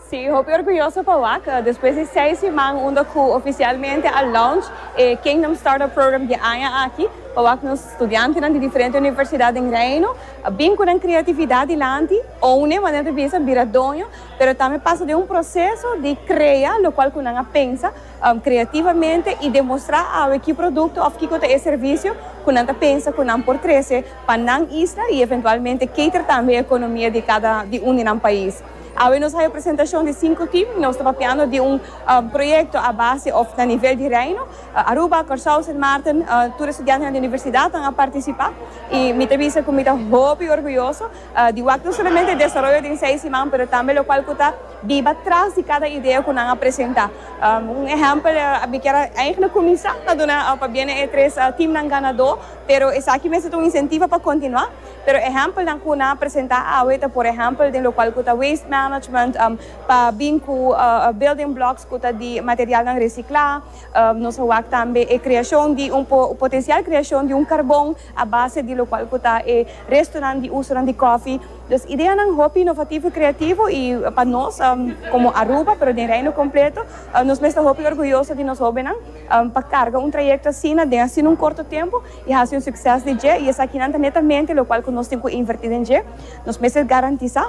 Sí, hopi orguyoso pa wak, despues di seis siman unda cu oficialmente a launch e Kingdom Startup Program di aña aki, pa wak nos studiantenan di diferente universidad den Reino a bin cu nan creatividad dilanti, oune, manera ta bisa, bira doño, pero tambe pasa den un proceso di crea locual cu nan a pensa creativamente y demostra awe ki producto of kico ta e servicio cu nan ta pensa cu nan por trece. pa nan isla y eventualmente cater tambe e economia di cada di un di nan pais. Awe nos haya presentacion di cinco team y nos ta papiando di un proyecto a base of na nivel di Reino, Aruba, Corsou, Sint Maarten, tur e studiantenan di universidadnan a participa y mi ta bisa cu mi ta hopi orguyoso di wak no solamente e desaroyo den seis siman pero tambe locual cu ta biba tras di cada idea cu nan a presenta. Un ehempel a bikier a eigenlijk cuminsa ta duna pa biene e tres teamnan ganador. Pero esaki mester ta un incentivo pa continua. Pero ehempelnan cu nan a presenta awe ta por ehempel den locual cu ta waste management, pa bin cu building blocks cu ta di materialnan recicla. Nos a wak tambe e creacion di un potencial creacion di un carbon a base di locual cu ta e restonan di usonan di coffee. Dus ideanan hopi innovativo y creativo y pa nos como Aruba pero den Reino completo nos mester hopi orguyoso di nos hobennan. Pa carga un trayecto asina den asina un corto tempo y haci un succes di dje y esakinan ta netamente locual cu nos tin cu inverti den dje. Nos mester garantisa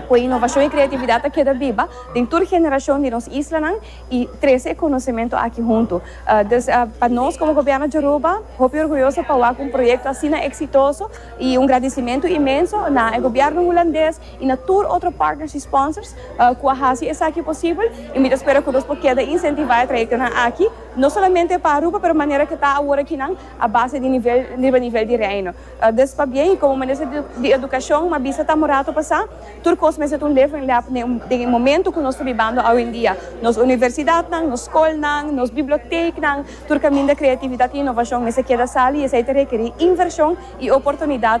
cu e innovacion y creatividad ta keda biba den tur generacion di nos islanan y trece e conocimento aki hunto. Dus pa nos como Gobierno Yoruba hopi orguyoso pa wak un proyecto asina exitoso y un gradicimento inmenso na e Gobierno Hulandes, y na tur otro partners y sponsors cu a haci esaki posibel y mi ta spera cu nos por keda incentiva e trayectonan aki no solamente pa Aruba pero manera cu ta awor aki nan a base di nivel riba nivel di Reino. Dus pabien y como Minister di Educacion m'a bisa tamo rato pasa tur cos mester ta un level lap den e momento cu nos ta bibando awendia. Nos universidadnan, nos scolnan, nos biblioteeknan, tur caminda creatividad y innovacion mester keda sali y esey ta requeri inversion y oportunidad.